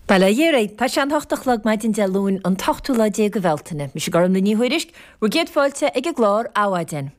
Bail ó Dhia oraibh, Tá sé an hocht a chlog maidin Dé Luain an t-ochtú lá déag de Bhealtaine. Mise Gormfhlaith Ní Thuairisg, bhur gcéad fáilte ag an gclár Adhmhaidin.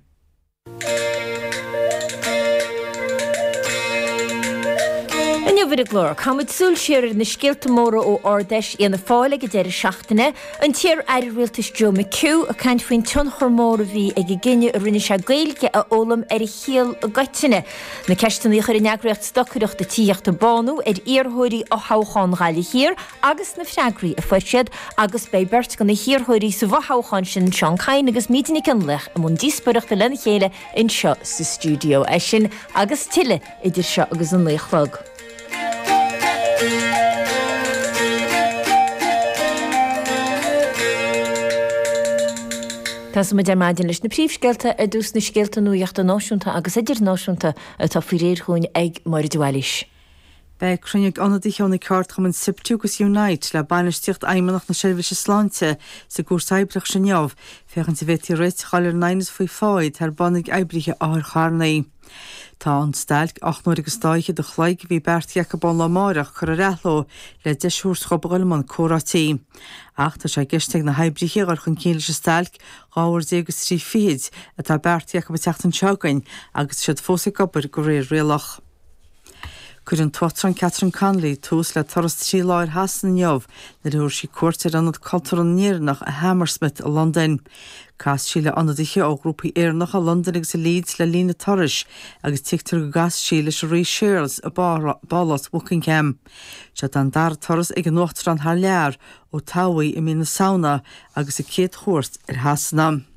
Inniu ar an gclár, caithfidh muid súil siar ar na scéalta móra ó Ard-Fheis Fhianna Fáil ag an deireadh seachtaine, an t-iar-aire rialtais Joe McHugh ag caint faoin tionchar mór a bhí ag an gcinneadh a rinne sé Gaeilge a fhoghlaim ar a shaol i gcoitinne, Na ceisteanna a chuir an eagraíocht stocaireachta Tithíochta Bánú ar iarrthóirí fhothoghchán Ghaillimh Thiar agus na freagraí a fuair siad agus beidh beirt de na hiarrthóirí sa bhfothoghchán sin, Seán Kyne agus Míde Nic Fhionnlaoich i mbun díospóireachta lena chéile anseo sa stiúideo. É sin agus tuilleadh idir seo agus a naoi a chlog. Tosóidh muid ar maidin leis na príomhscéalta ar dtús na scéalta nuachta náisiúnta agus idirnáisiúnta atá faoi réir dhúinn ag Máire de Bhailís. Beidh cruinniú ag ionadaithe ó na ceardchumainn Siptu agus Unite le bainistíocht Fheidhmeannacht na seirbhíse sláinte sa gCúirt Oibreachais inniu féachaint an bhféadfaí réiteach a fháil ar an aighneas faoi phá atá ar bun ag oibrithe otharcharranna. Tá an stailc ocht n-uair agus dá fhichead a chloig a bhí beartaithe acu ón lá amárach curtha ar athló le deis a thabhairt dhób a dhul i mbun comhráití. Ach tá sé i gceist ag na hoibrithe a dhul chun cinn leis an stailc dhá uair déag is trí fichid atá beartaithe acu an tseachtain seo chugainn agus iad fós ag obair de réir rialach. Cuirfidh an tUachtarán Catherine Connolly tús le turas trí lá ar Shasana inniu nuair a thabharfaidh sí cuairt ar Ionad Cultúrtha na nÉireannach i Hammersmith i Londain. Casfaidh sí le ionadaithe ó ghrúpaí Éireannacha i Londain agus i Leeds le linn a turais agus tuigtear go gcasfaidh sí leis an Rí Séarlas i bPálás Buckingham. Seod é an dara turas ag an Uachtarán thar lear ó toghadh í i mí na Samhna agus a céad chuairt ar Shasana.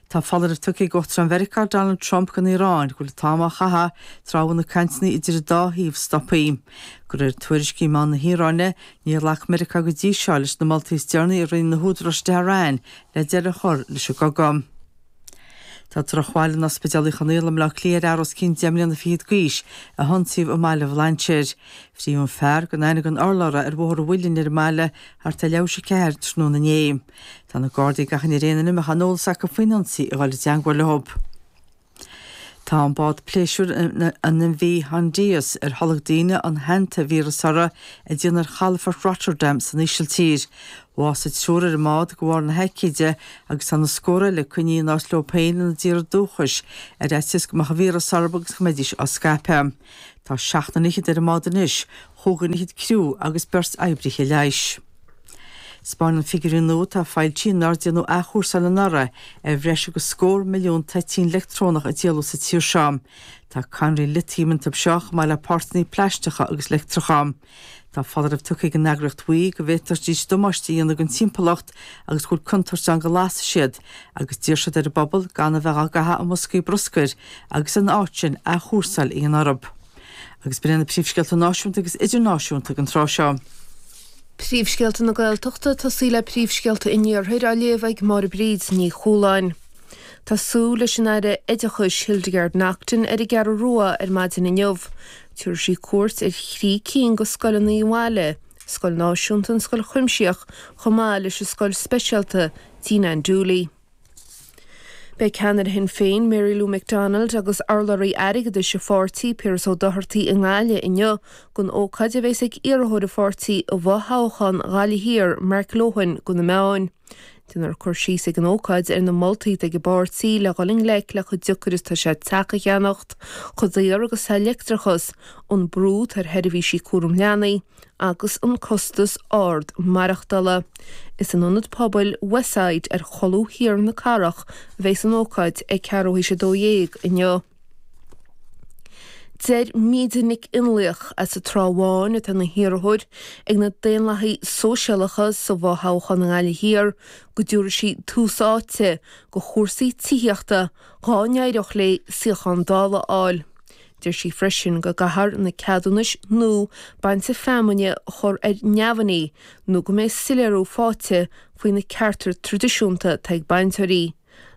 Tá foláireamh tugtha ag Uachtarán Mheiriceá Donald Trump don Iaráin go bhfuil an t-am á chaitheamh tráth a bhfuil na cainteanna idir an dá thaobh stoptha. De réir tuairiscí i meáin na hIaráine, níor ghlac Meiriceá go dtí seo leis na moltaí is deireanaí a rinne na húdaráis i dTehran le deireadh a chur leis an gcogadh. Tá drochbhail in Ospidéal Uí Chonaill i mBleá Cliath ar fhear os cionn deich mbliana fichead d'aois a hionsaíodh i mBaile Bhlainséir. Frítheadh an fear gan aithne gan urlabhra ar Bhóthar an Mhuilinn ar an mbaile thart ar a leathuair tar éis a ceathair tráthnóna inné. Tá na Gardaí ag achainí ar aon duine a mbeadh aon eolas acu faoin ionsaí a dhul i dteangmháil leo. Tá an bád pléisiúir an MV Hondius, ar tholg daoine an hantavíreas uirthi, ag déanamh ar chalafort Rotterdam san Ísiltír. Bhásaigh triúr ar an mbád de bharr na haicíde agus tá na scórtha eile coinnithe in áit leo féin ina dtíortha dúchais ar fhaitíos go mbeadh an víreas orthu agus go mbeidís á scaipeadh. Tá seacht nduine fhichead ar an mbád anois, chúig dhuine fhichead criú agus beirt oibrithe leighis. Spáineann na figiúirí nua atá foilsithe nár déanadh athchúrsáil anuraidh ar bhreis agus scór milliún toitín leictreonach a díoladh sa tír seo. Tá cadhnraí litiam iontu seo, chomh maith le páirteanna plaisteacha agus leictreacha. Tá foláireamh tugtha ag an eagraíocht WEEE go bhféadfadh siad damáiste a dhéanamh don timpeallacht agus go bhfuil contúirt ann go lasfaidh siad agus d'iarr siad ar an bpobal gan a bheith á gcaitheamh i mboscaí bruscair agus ina áit sin athchúrsáil a dhéanamh orthu. agus b'in iad na príomhscéalta náisiúnta agus idirnáisiúnta ag an tráth seo. Príomhscéalta na Gaeltachta, ag tosú le príomhscéalta an Iarthair á léamh ag Máire Bríd Ní Chualáin. Tá súil leis an Aire Oideachais Hildegarde Naughton ar an gCeathrú Rua ar maidin inniu. Tabharfaidh sí cuairt ar thrí cinn de scoileanna an bhaile, scoil náisiúnta an scoil chuimsitheach chomh maith leis an scoil speisialta Tigh Nan Dooley. Beidh ceannaire Shinn Féin, Mary Lou McDonald, agus urlabhraí airgeadais an pháirtí, Piaras Ó Dochartaigh, i nGaillimh inniu don ócáid a bheas ag iarrthóir an pháirtí i bhfothoghchán Ghaillimh Thiar, Mark Lohan, do na meáin. Déanfar cur síos ag an ócáid ar na moltaí atá ag an bpáirtí le dhul i ngleic le chomh deacair is atá sé teach a cheannacht, chomh daor agus atá leictreachas, an brú atá ar sheirbhísí cúram leanaí, agus an costas ard maireachtála. Is in Ionad Pobail Westside ar cholbha thiar na cathrach a bheas an ócáid, ag ceathrú théis a dó dhéag inniu. Deir Míde Nic Fhionnlaoich, as an Trá Bháin, atá ina hiarrthóir ag na Daonlathaigh Sóisialacha sa bhfo-thoghchán i nGaillimh Thiar, go dtabharfaidh sí tús áite do chúrsaí tithíochta dhá n-éireodh léi suíochán Dála a fháil. Deir sí freisin go gcaithfear na ceadúnais nua bainte feamainne a chur ar neamhní nó go mbeidh soiléiriú faighte faoi na cearta traidisiúnta atá ag bainteoirí.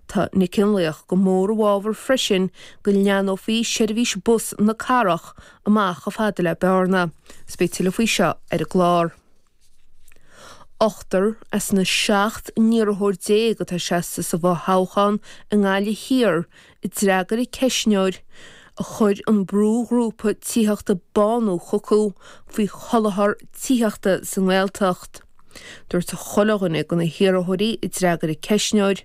Tá Nic Fhionnlaoich go mór i bhfabhar freisin go leathnófaí seirbhís bus na cathrach amach chomh fada le Bearna. Is beidh tuilleadh faoi seo ar an gclár. Ochtar as na seacht n-iarrthóir déag atá seasta sa bhfothoghchán i nGaillimh Thiar a d'fhreagair an ceistneoir a chuir an brúghrúpa tithíochta Bánú chucu faoi sholáthar tithíochta sa nGaeltacht. Dúirt chuile dhuine de na hiarrthóirí a d'fhreagair an ceistneoir,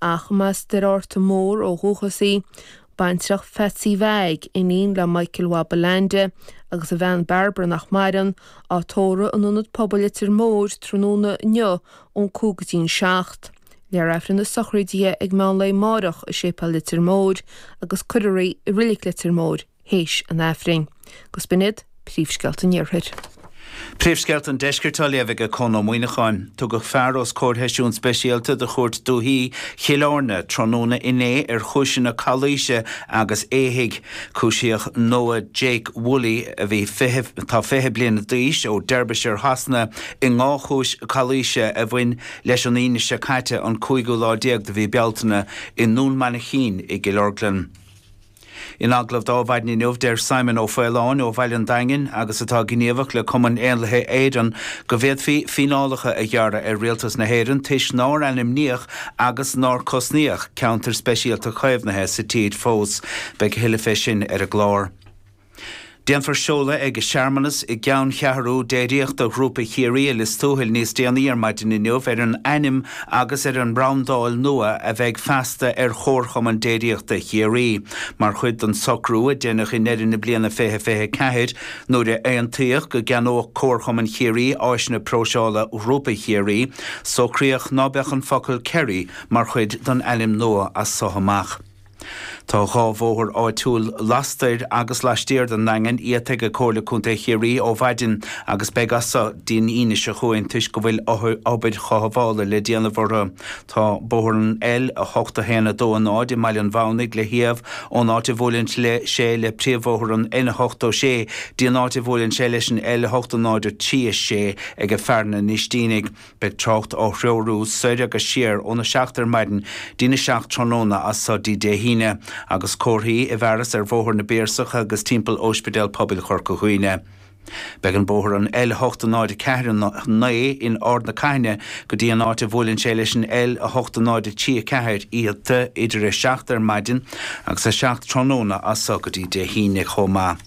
Ach b'as Doire Fhatharta Mór ó dhúchas í, baintreach Pheatsaí Mheaig, iníon le Michael Mhaigh Ballande, agus a bhean Barbara nach maireann, á tórramh in Ionad Pobail Leitir Móir tráthnóna inniu ón cúig go dtí an seacht. Léifear Aifreann na sochraide ag meánlae amáireach i Séipéal Leitir Móir agus cuirfear í i Reilig Leitir Móir, théis an Aifrinn. Gus b'in iad príomhscéalta an Iarthair. Príomhscéalta an Deiscirt á léamh aige Conn Ó Muíneacháin. Tugadh fear os comhair sheisiún speisialta de Chúirt Dúichí Chill Airne tráthnóna inné ar chúiseanna calaoise agus éithigh. Cúisíodh Noah Jake Woolley, a bhí 20, atá 20 bliana d'aois, ó Derbyshire Shasana i ndhá chúis calaoise a bhain leis an Aoine seo caite, an cúigiú lá déag de mhí Bealtaine, i nDún Mainchín i gCill Orglan. In agallamh d'Adhmhaidin inniu, deir Simon Ó Faoláin ó Bhaile an Daingin, agus atá gníomhach le Cumann Éanlaithe Éireann, go bhféadfaí fíneálacha a ghearradh ar Rialtas na hÉireann toisc nár ainmníodh agus nár cosnaíodh ceantair speisialta caomhnaithe sa tír fós. Beidh a thuilleadh fé sin ar an gclár. Déanfar seoladh ag searmanas i gceanncheathrú déiríochta Ghrúpa Chiarraí i Lios Tuathail níos déanaí ar maidin inniu ar an ainm agus ar an mbrandáil nua a bheidh feasta ar Chomharchumann Déiríochta Chiarraí mar chuid den socrú a deineadh i ndeireadh na bliana 2024 nuair a aontaíodh go gceannódh Comharchumann Chiarraí áiseanna próiseála Ghrúpa Chiarraí. Socraíodh ná beadh an focal Kerry mar chuid den ainm nua as so amach. Tá dhá bhóthar áitiúil lastoir agus laistiar den Daingean iata aige Comhairle Contae Chiarraí ó mhaidin agus beidh as so dtí an Aoine seo chugainn toisc go bhfuil obair chothabhála le déanamh orthu. Tá bóthar an L8 1 2 0 i mBaile an Bhúnaigh le hiamh ón áit a bhuaileann sé le príomhbhóthar an N86 dtí an áit a bhuaileann sé leis an L8 0 3 6 aige Fearann an Ístínigh. Beidh trácht á threorú soir agus siar óna seacht ar maidin dtína seacht tráthnóna as so dtí Dé hAoine, agus comharthaí i bhfearas ar Bhóthar na bPiarsach agus timpeall Óispidéal Pobail Chorca Dhuibhne. Beidh an bóthar an L8 0 4 9 in Ard na Caithne go dtí an áit a bhuaileann sé leis an L8 0 3 4 iata idir a seacht ar maidin agus a seacht tráthnóna as so go dtí Dé hAoine chomh maith.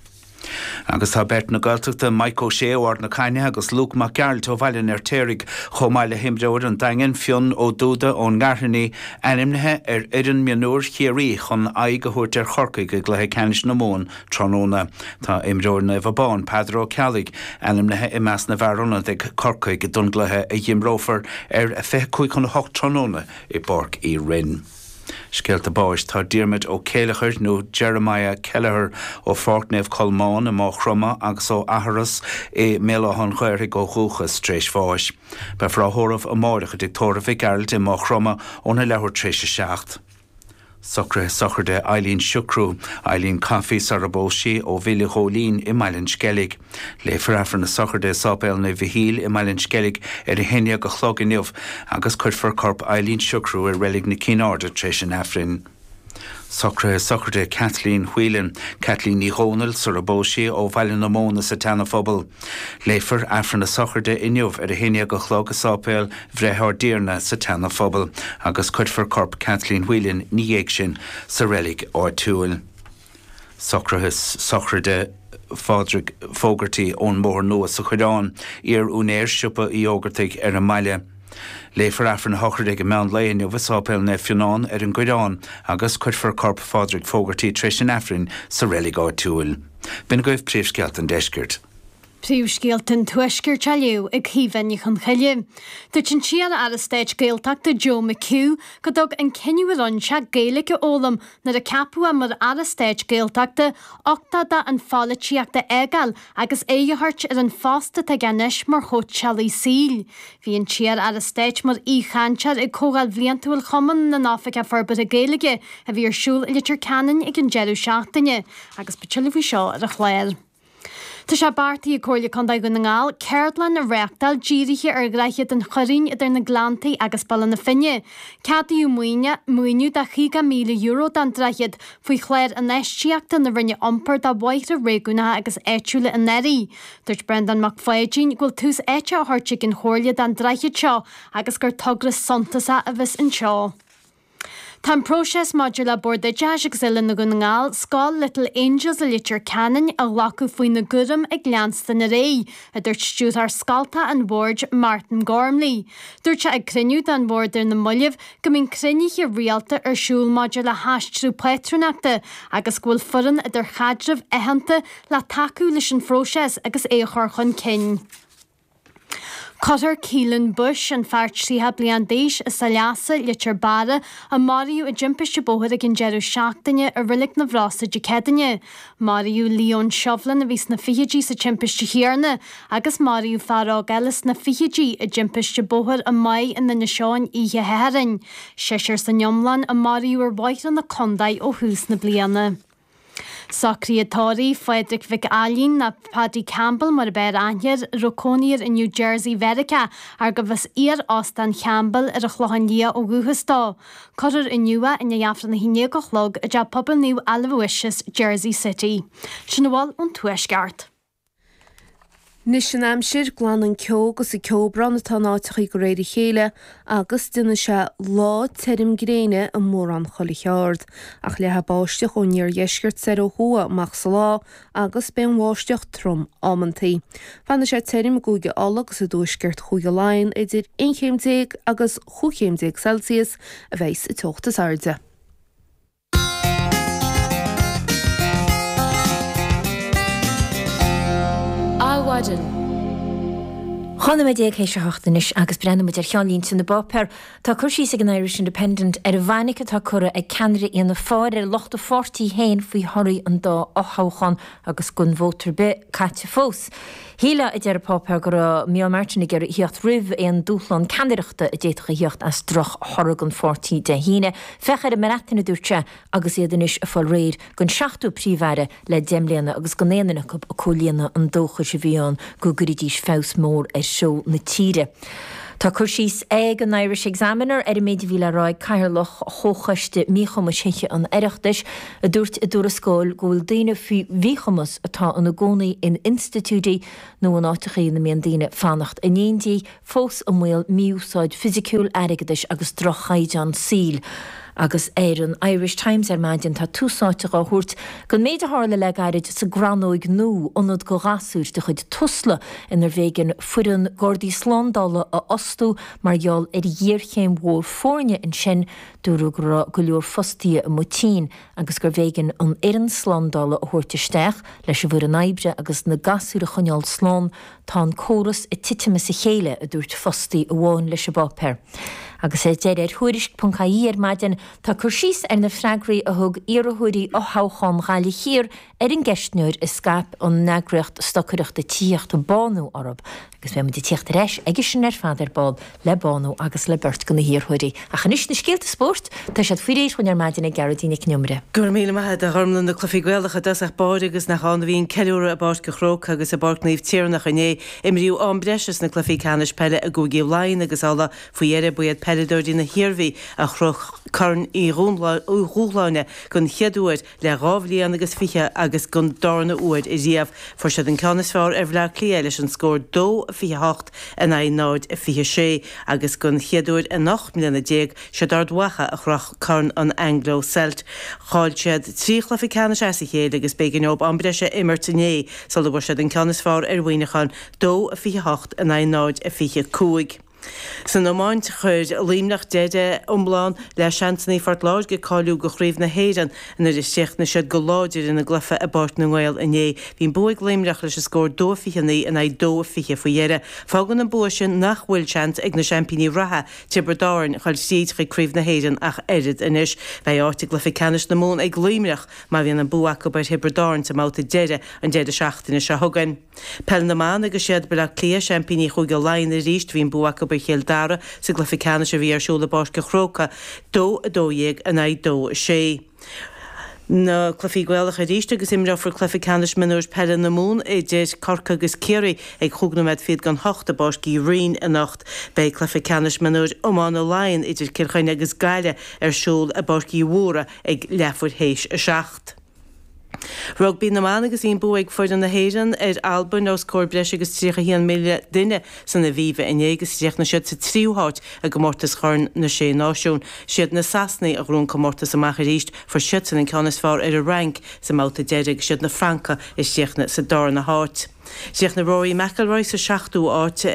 Agus tá beirt na Gaeltachta, Mike Ó Sé ó Ard na Caithne agus Luke Mac Gearailt ó Bhaile an Fheirtéaraigh, chomh maith le himreoir an Daingin, Fionn Ó Dúda ón nGairfeanaigh, ainmnithe ar fhoireann mionúir Chiarraí chun aghaidh a thabhairt ar Chorcaigh i gcluiche ceannais na Mumhan tráthnóna. Tá imreoir Naomh Abán, Peadar Ó Ceallaigh, ainmnithe i measc na bhfear ionaid ag Corcaigh don gcluiche a dh'imreofar ar a 25 chun a hocht tráthnóna i bPáirc Uí Rinn. Scéalta Báis Tá Diarmaid Ó Céilleachair, nó Jeremiah Kelleher, ó Pháirc Naomh Colmán i Máigh Chromtha agus ó Eachros i mBéal Átha an Ghaorthaidh ó dhúchas, tar éis bháis. Beifear á thórramh amáireach i dTigh Tórraimh Mhic Gearailt i Máigh Chromtha óna leathuair tar éis a seacht. Socruithe Sochraide Eileen Siochrú Eileen Coffey sara bpós sí, ó Mhill an Ghóilín i mBaile an Sceilg. Léifear Aifreann na Sochraide i Sáipéal Naomh Mhichíl i mBaile an Sceilg ar a haon déag a chlog inniu agus cuirfear corp Eileen Sugrue i Reilig na Cinn Airde tar éis an Aifrinn. Socruithe sochraide Kathleen Whelan, Caitlín Ní Dhomhnaill, sarar phós sí, ó Bhaile na Móna sa tSeana Phobal. Léifear Aifreann na Sochraide inniu ar a haon déag a chlog i Sáipéal Bhreith Ár dTiarna sa tSeana Phobal agus cuirfear corp Kathleen Whelan ina dhiaidh sin sa reilig áitiúil. Socruithe sochraide Phádraig Fogarty ón mBóthar Nua sa Choireán, iar-úinéir siopa Uí Fhógartaigh ar an mbaile. Léifear Aifreann a shochraide ag an meán lae inniu i Sáipéal Naomh Fionán ar an gCoireán agus cuirfear corp Phádraig Fogarty tar éis an Aifrinn sa reilig áitiúil. B'in agaibh príomhscéalta an deiscirt. Príomhscéalta an Tuaiscirt á léamh ag Caoimhe Ní Chonchoille. Dúirt an t-iar-aire stáit Gaeltachta Joe McHugh go dtug an cinneadh a rinne sé Gaeilge a fhoghlaim nuair a ceapadh é mar aire stáit Gaeltachta uchtach dó an pholaitíocht a fhágáil agus aghaidh a thabhairt ar an phost atá aige anois mar chóitseálaí saoil. Bhí an t-iar-aire stáit mar aoi-chainteoir ag comhdháil bhliantúil Chumann na nOifigeach Forbartha Gaeilge a bhí ar siúl i Leitir Ceanainn ag an deireadh seachtaine agus beidh tuilleadh faoi seo ar an chlár. Tá sé beartaithe ag Comhairle Contae Dhún na nGall ceardlann a reáchtáil dírithe ar Dhroichead an Choirín idir na Gleanntaí agus Baile na Finne. Ceadaíodh maoiniú de €50,000 don droichead faoi Chlár Infheistíochta na Roinne Iompair do Bhóithre Réigiúnacha agus Áitiúla anuraidh. Dúirt Breandán Mac Pháidín go bhfuil tús áite á thabhairt ag an Chomhairle don droichead seo agus gur togra suntasach a bheas anseo. Tá an próiseas maidir le Bord Oideachais agus Oiliúna Dhún na nGall, Scoil Little Angels i Leitir Ceanainn a ghlacadh faoina gcúram ag leanstan ar aghaidh, a dúirt Stiúrthóir scoltacha an Bhoird, Martin Gormley. Dúirt sé ag cruinniú den Bhord ar na mallaibh go mbíonn cruinnithe rialta ar siúl maidir le haistriú pátrúnachta agus go bhfuil foireann idirchaidreamh aitheanta le tacú leis an phróiseas agus é a chur chun cinn. Cuirfear Keelan Bush, an fear 30 bliain d'aois as Saileasa, Leitir Beara, a maraíodh i dtimpiste bóthair ag an deireadh seachtaine, i Reilig na bhFrasa Dé Céadaoine. Maraíodh Leon Shovlin, a bhí sna fichidí, sa timpiste chéanna agus maraíodh fear óg eile sna fichidí i dtimpiste bóthair i mBeart in Inis Eoghain oíche Shathairn. Seisear san iomlán a maraíodh ar bhóithre na contae ó thús na bliana. Socruithe tórraimh Phádraig Mhic Ailín, nó Paddy Campbell mar ab fhearr aithne air, a raibh cónaí air i New Jersey Mheiriceá arbh as iar-Óstán Champbell ar an Chlochán Liath ó dhúchas dó. Cuirfear inniu é i ndiaidh Aifreann a hAon Déag a Chlog i dTeach Pobail Naomh Aloysius, Jersey City. Sin a bhfuil ón Tuaisceart. Anois an aimsir, glanfaidh an ceo agus an ceobhrán atá in áiteachaí de réir a chéile agus déanfaidh sé lá tirim gréine i mórán chuile aird, ach leathfaidh báisteach ón iardheisceart soir ó thuaidh amach sa lá agus beidh an bháisteach trom amantaí. Fanfaidh sé tirim i gCúige Uladh agus i dtuaisceart Chúige Laighean, idir aon chéim déag agus chúig chéim déag Celsius a bheas an teocht is airde. Adhmhaidin. Aon nóiméad déag théis a hocht anois agus breathnóidh muid ar cheannlínte na bpáipéar. Tá cur síos ag an Irish Independent ar an bhfainic atá curtha ag ceannaire Fhianna Fáil ar lucht a pháirtí féin faoi thorthaí an dá fhothoghchán agus gan vóta ar bith caite fós. Is é an chaoi, a deir an páipéar, go raibh Micheál Martin ag iarraidh theacht roimh aon dúshlán ceannaireachta a d'fhéadfadh a theacht as drochthoradh an pháirtí Dé hAoine. Féach ar an mBreatain, a dúirt sé, agus iad anois ag fáil réidh don seachtú Príomh-Aire le deich mbliana agus gan aon duine acu ag comhlíonadh an dóchais a bhí ann go gcuirfidís feabhas mór ar gheilleagar na tíre. Tá cur síos ag an Irish Examiner ar an méid a bhí le rá ag Cathaoirleach Chomhchoiste Míchumais Thithe an Oireachtais, a dúirt i dtuarascáil go bhfuil daoine faoi mhíchumas atá ina gcónaí in institiúidí nó in áiteacha ina mbíonn daoine ag fanacht in éindí fós i mbaol mí-úsáid fhisiciúil, airgeadais agus drochchaighdeán saoil. Agus ar an Irish Times ar maidin tá tús áite dhá thabhairt don méid a tharla le gairid sa gCrannóig Nú, ionad do ghasúir de chuid Tusla inar bh'éigean foireann Gardaí Slándála a fhostú mar gheall ar ghéarchéim mhór foirne ansin Dúradh go raibh go leor fostaithe amuigh tinn agus gurbh éigean an fhoireann slándála a thabhairt isteach leis an bhfoireann oibre agus na gasúir a choinneáil slán, tá an córas ag titim as a chéile, a dúirt fostaí amháin leis an bpáipéar. Agus ar deireadh ar Tuairisc.ie ar maidin, tá cur síos ar na freagraí a thug iarrthóirí fhothoghchán Ghaillimh Thiar Ar an gceistneoir a scaip an eagraíocht stocaireachta tithíochta Bánú orthu, agus beimid ag tíocht ar ais aige sin ar fad ar ball le Bánú agus le beirt de na hiarrthóirí. Ach anois, na scéalta spóirt, tá siad faoi réir dhúinn ar maidin ag Gearóidín Nic an Iomaire. Go raibh míle maith agat a Ghormfhlaith, na Cluichí Gaelacha i dtosach báire agus nach ann a bhí an ceiliúradh i bPáirc an Chrócaigh agus i bPáirc Naomh Tiarnach inné. Imríodh am breise sna cluichí ceannais peile i gcúigí Laighean agus Uladh faoi dheireadh. Ba iad peileadóirí na hIarmhí a chroch Corn Uí Dhubhshláine den chéad uair le dhá bhliain agus fiche agus don darna uair ariamh fuair siad an ceann is fearr ar Bhleá Cliath leis an scór 2, 28 in aghaidh 0, 26 agus den chéad uair in ocht mbliana déag is iad Ard Mhacha a chroch Corn an Anglo Celt. Chaill siad trí chluiche ceannais as a chéile agus b'éigean dóibh am breise a imirt inné sula bhfuair siad an ceann is fearr ar Mhuineachán, 2, 28 in aghaidh 0, 25. San iomáint, chuir Luimneach deireadh iomlán le seansanna Phort Láirge cáiliú go Craobh na hÉireann. Nuair a chríochnaigh siad go láidir ina gcluiche i bPáirc na nGael inné, bhí an bua ag Luimneach leis an scór dó a 29 in aghaidh dó a 20 faoi dheireadh. Fágann an bua sin nach bhfuil seans ag na seaimpíní reatha, Tiobraid Árainn, dul thríd chuig Craobh na hÉireann ach oiread anois. Beidh áit i gcluiche ceannais na Mumhan ag Luimneach má bhíonn an bua acu ar Thiobraid Árainn sa mbabhta deiridh an deireadh seachtaine seo chugainn. Peil na mBan agus 'siad B'leá Cliath seaimpíní Chúige Laighean arís bhí an bua acu ar Chill Dara sa gcluiche ceannais a bhí ar siúl i bPáirc an Chrócai dó 12 in aghaidh dó 6. Na cluichí Gaelacha arís agus imreofar cluiche ceannais mionúir peile na Mumhan idir Corcaigh agus Ciarraí ag chúig nóiméad fhichead gan hocht i bPáirc Uí Rinn anocht. Beidh cluiche ceannais mionúir iomána Laighean idir Cill Chainnigh agus Gaillimh ar siúl i bPáirc Uí Mhórdha ag leathmhair théis a seacht. Rugbaí na mBan agus bhí an bua ag foireann na hÉireann ar Albain os comhair breis agus 31,000 duine san Aviva inné agus chríochnaigh siad sa tríú háit i gcomórtas Chorn na Sé Náisiún. Siad na Sasanaigh a ghnóthaigh an comórtas amach arís, fuair siadsan an ceann is fearr ar an Fhrainc sa mbabhta deiridh agus siad na Francaigh a chríochnaigh sa darna háit. Chríochnaigh Rory McIlroy sa seachtú háit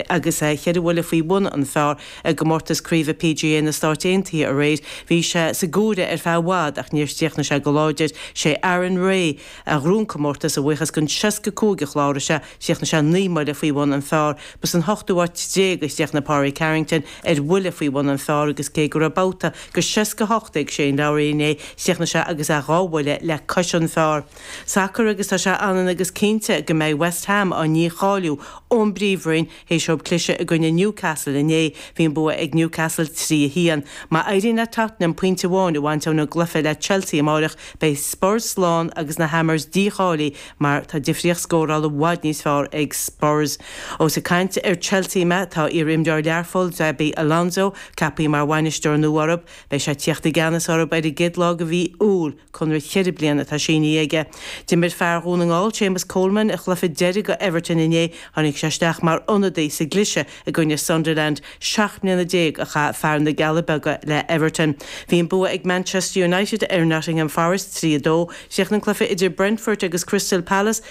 agus é ceithre bhuille faoi bhun an phár i gcomórtas craoibhe PGA na Stáit Aontaithe aréir. Bhí sé sa gcomhaireamh ar feadh i bhfad ach níor chríochnaigh sé go láidir. Sé Aaron Rai a ghnóthaigh an comórtas a bhuíochas don seasca cúig a chláraigh sé. Chríochnaigh sé naoi mbuille faoi bhun an phár. Ba san hochtú háit déag a chríochnaigh Pádraig Harrington ar bhuille faoi bhun an phár agus cé go raibh babhta go seasca hocht ag Shane Lowry inné, chríochnaigh sé agus é dhá bhuille le cois an phár. Sacair agus tá sé ionann agus cinnte go mbeidh West Ham á ndícháiliú ón bPríomhroinn théis dóibh cliseadh i gcoinne Newcastle inné, bhí an bua ag Newcastle 3 1. Má éiríonn le Tottenham pointe amháin a bhaint óna gcluiche le Chelsea amáireach, beidh Spurs slán agus na Hammers dícháilithe mar tá difríocht scórála i bhfad níos fearr ag Spurs. Ós ag caint ar Chelsea mé, tá iar-imreoir Learphoill, Xabi Alonso, ceapthaí mar bhainisteoir nua orthu. Beidh sé ag tíocht i gceannas orthu ar an gcéad lá de mhí Iúil. Conradh ceithre bliana atá sínithe aige. D'imir fear Dhún na nGall, Séamus Coleman, a chluiche deiridh go Everton inné. Tháinig sé isteach mar ionadaí sa gcliseadh i gcoinne Sunderland. Seacht mbliana déag a chaith fear na gCealla Beaga le Everton. Bhí an bua ag Manchester United ar Nottingham Forest, 3, 2. Chríochnaigh an cluiche idir Brentford agus Crystal Palace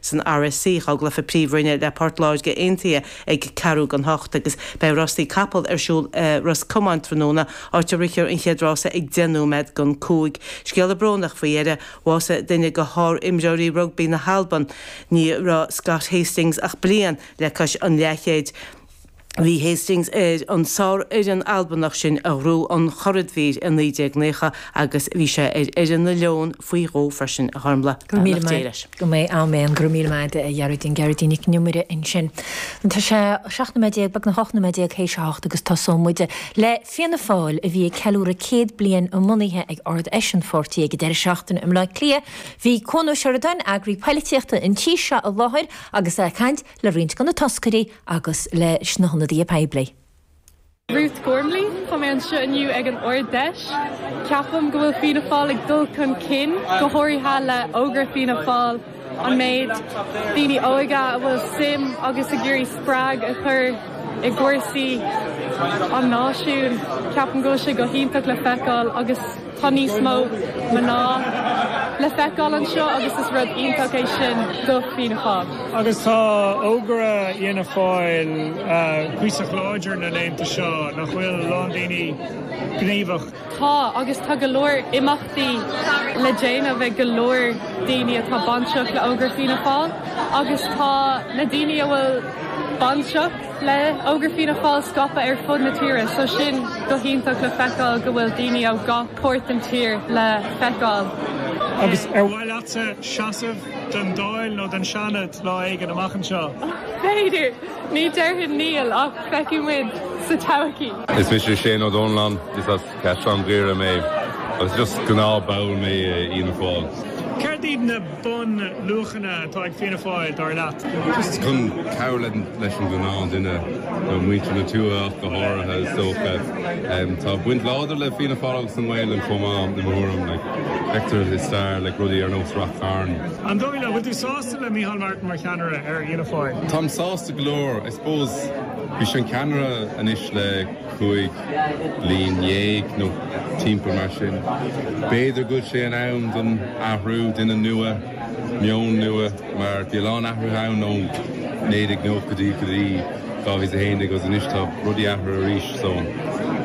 san RSC, dhá gcluiche Príomhroinne le Port Láirge Aontaithe ag ceathrú gan hocht, agus beidh rásaí capaill ar siúl i Ros Comáin tráthnóna, áit a rithfear an chéad rása ag deich nóiméad gan cúig. Scéala brónach faoi dheireadh, bhásaigh duine go shárimreoirí rugbaí na hAlban. Ní raibh Scott Hastings ach bliain le cois an leathchéid. Bhí Hastings ar an sárfhoireann Albanach sin a ghnóthaigh an churadhmhír i 1990 agus bhí sé ar fhoireann na Leon faoi dhó freisin a Ghormlaith. Beannacht Dé leis. Go mbeidh am éan go raibh míle maith agat a Ghearoidín, Gearóidín Nic an Iomaire ansin. Tá sé seacht nóiméad déag, beagnach ocht nóiméad déag théis a hocht agus tosóidh muid le Fianna Fáil a bhí ag ceiliúradh céad bliain a mbunaithe ag Ard-Fheis an pháirtí ag an deireadh seachtaine i mBleá Cliath. Bhí Cuan Ó Seireadáin, eagarthóir polaitíochta an tí seo i láthair agus é ag caint. le roinnt de na toscairí agus leis na hionadaithe poiblí. Ruth Gormley. Tá mé anseo inniu ag an Ard-Fheis. Ceapaim go bhfuil Fianna Fáil ag dul chun cinn, go háirithe le Ógra Fianna Fáil, an méid daoine óga a bhfuil suim agus ag iarraidh spreagadh a chur i gcúrsaí an náisiúin. Ceapaim go bhfuil sé go hiontach le feiceáil agus Tá níos mó mná le feiceáil anseo agus is rud iontach é sin do Fianna Fáil. Agus tá Ógra Fhianna Fáil cuíosach láidir na laethanta seo, nach bhfuil, lán daoine gníomhach. Tá, agus tá go leor imeachtaí le déanamh ag go leor daoine atá bainteach le hÓgra Fianna Fáil agus tá na daoine a bhfuil bainteach, le Ógra Fianna Fáil scaipthe ar fud na tíre, so sin go hiontach le feiceáil go bhfuil daoine ó gach páirt den tír le feiceáil. Agus ar mhaith leatsa seasamh don Dáil nó don Seanad lá éigin amach anseo? B'fhéidir. Ní déarfainn níl, ach feicfidh muid sa todhchaí. Is mise Shane Ó Dónalláin, is as. Cathair Dhoire mé agus just gnáth ball mé i Fhianna Fáil. Céard iad na bun luachanna atá ag Fianna Fáil dar leat? Just chun cabhrú le leis an ghnáth duine nó muintir na tuaithe ach go háirithe is dócha. Tá baint láidir le Fianna Fáil agus an nGaelainn chomh maith i mo thuairim like feictear i stair like rudaí ar nós Rath Chairn. An dóigh leat, bhfuil tú sásta le Micheál Martin mar cheannaire ar Fhianna Fáil? Táim sásta go leor. I suppose bhí sé an ceannaire anois le. cúig bliana déag nó timpeall mar sin. B'fhéidir go bhfuil sé in am don athrú, duine nua, meon nua mar bhí a lán athruithe ann ón naoi déag nóchaidí go dtí dhá mhíle a haon déag agus anois tá rudaí athruithe arís so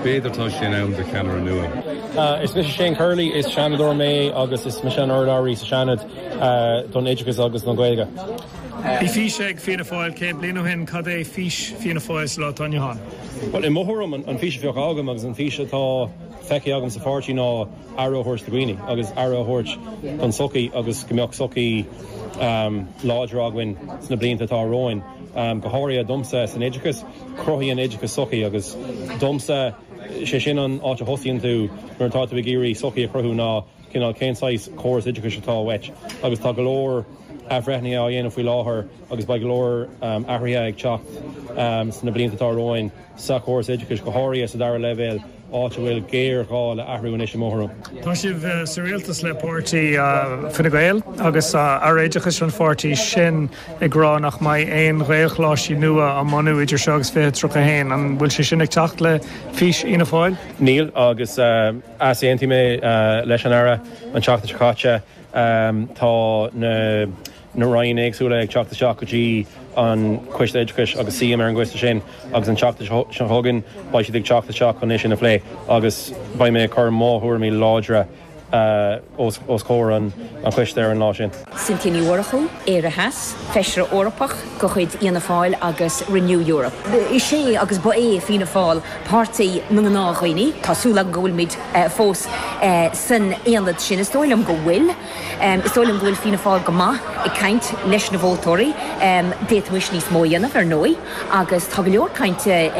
b'fhéidir tá sé in am do cheannaire nua. Is mise Shane Curley, is Seanadóir mé agus is mise an urlabhraí sa Seanad don Oideachas agus don Ghaeilge. Bhí fís ag Fianna Fáil 100 bliain ó shin, cad é fís Fianna Fáil sa lá atá inniu ann? Bhuel, i mo thuairim, an fís a bheadh agam agus an fís atá feicthe agam sa pháirtí ná aire a thabhairt do dhaoine agus aire a thabhairt don tsochaí agus go mbeadh sochaí láidir againn sna blianta atá romhainn. Go háirithe domsa, san oideachas, cruthaíonn oideachas sochaí agus domsa, sé sin an áit a thosaíonn tú nuair atá tú ag iarraidh sochaí a chruthú ná cineál cén saghas córas oideachais atá uait agus tá go leor athbhreithnithe á dhéanamh faoi láthair agus beidh go leor athruithe ag teacht sna blianta atá romhainn sa chóras oideachais, go háirithe sa dara leibhéal, áit a bhfuil géarghá le athrú anois i mo thuairim. Tá sibh sa rialtas le páirtí Fine Gael agus Aire Oideachais an pháirtí sin ag rá nach mbeidh aon ghaelcholáistí nua á mbunú idir seo agus 2031. An bhfuil sé sin ag teacht le fís Fhianna Fáil? Níl agus. Easaontaigh mé leis an Aire an tseachtain seo caite. Tá na Roinn éagsúla ag teacht isteach go dtí an Coiste Oideachais agus suím ar an gcoiste sin agus an tseachtain seo chugainn beidh siad ag teacht isteach chun é sin a phlé agus beidh mé ag cur mo thuairimí láidre os comhair an Choiste ar an lá sin. Cynthia Ní Mhurchú, Éire Theas, Feisire Eorpach de chuid Fhianna Fáil agus Renew Europe. Is é agus ba é Fianna Fáil páirtí na ngnáthdhaoine. Tá súil agam go bhfuilimid fós san aonad sin. Is dóigh liom go bhfuil. Is dóigh liom go bhfuil Fianna Fáil go maith ag caint leis na vótóirí. D'fhéadfaimis níos mó a dhéanamh, ar ndóigh, agus tá go leor cainte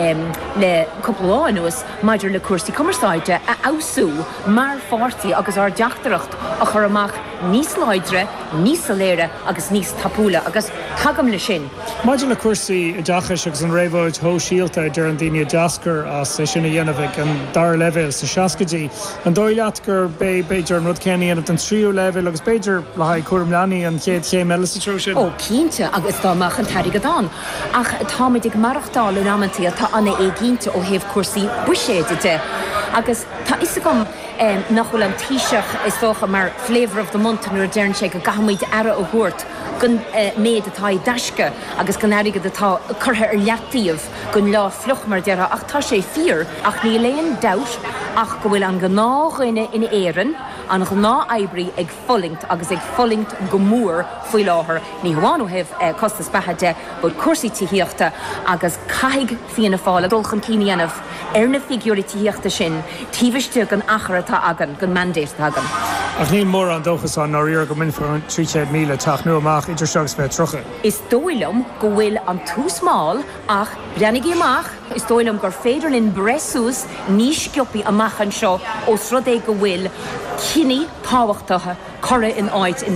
le cúpla lá anuas maidir le cúrsaí cumarsáide a fheabhsú. mar pháirtí agus ár dteachtaireacht a chur amach níos láidre, níos soiléire agus níos tapúla agus tagaim leis sin. Maidir le cúrsaí oideachais agus an réabhlóid shóisialta a deireann daoine a d'eascair as, é sin a dhéanamh ag an dara leibhéal sna seascaidí, an dóigh leat gurb é b'fhéidir an rud céanna a dhéanamh don tríú leibhéal agus b'fhéidir le haghaidh cúram leanaí an chéad chéim eile sa treo sin? Ó, cinnte, agus dá mbeadh an t-airgead ann. Ach táimid ag maireachtáil in amantaí atá an-éiginnte ó thaobh cúrsaí buiséid de Tá a fhios agam nach bhfuil an Taoiseach, is dócha, mar flavour of the month nuair a deireann sé go gcaithfimid aire a thabhairt don méid atá i dtaisce agus don airgead atá curtha ar leataobh don lá fliuch, mar a déarfá, ach tá sé fíor. Ach níl aon dabht ach go bhfuil an gnáthdhuine in Éirinn, an gnáth-oibrí ag. fulaingt agus ag fulaingt go mór faoi láthair, ní hamháin ó thaobh costas beatha de but cúrsaí tithíochta agus caithfidh Fianna Fáil dul chun cinn a dhéanamh ar na figiúirí tithíochta sin taobh istigh den achar atá againn, den mandate atá againn. Ach níl mórán dóchas ann i ndáiríre go mbainfear an 300,000 teach nua amach idir seo agus 2030. Is dóigh liom go bhfuil an tús mall ach breathnaígí amach! Is dóigh liom gur féidir linn breith suas níos sciobthaí amach anseo ós rud é go bhfuil cinní tábhachtacha curtha in áit anois.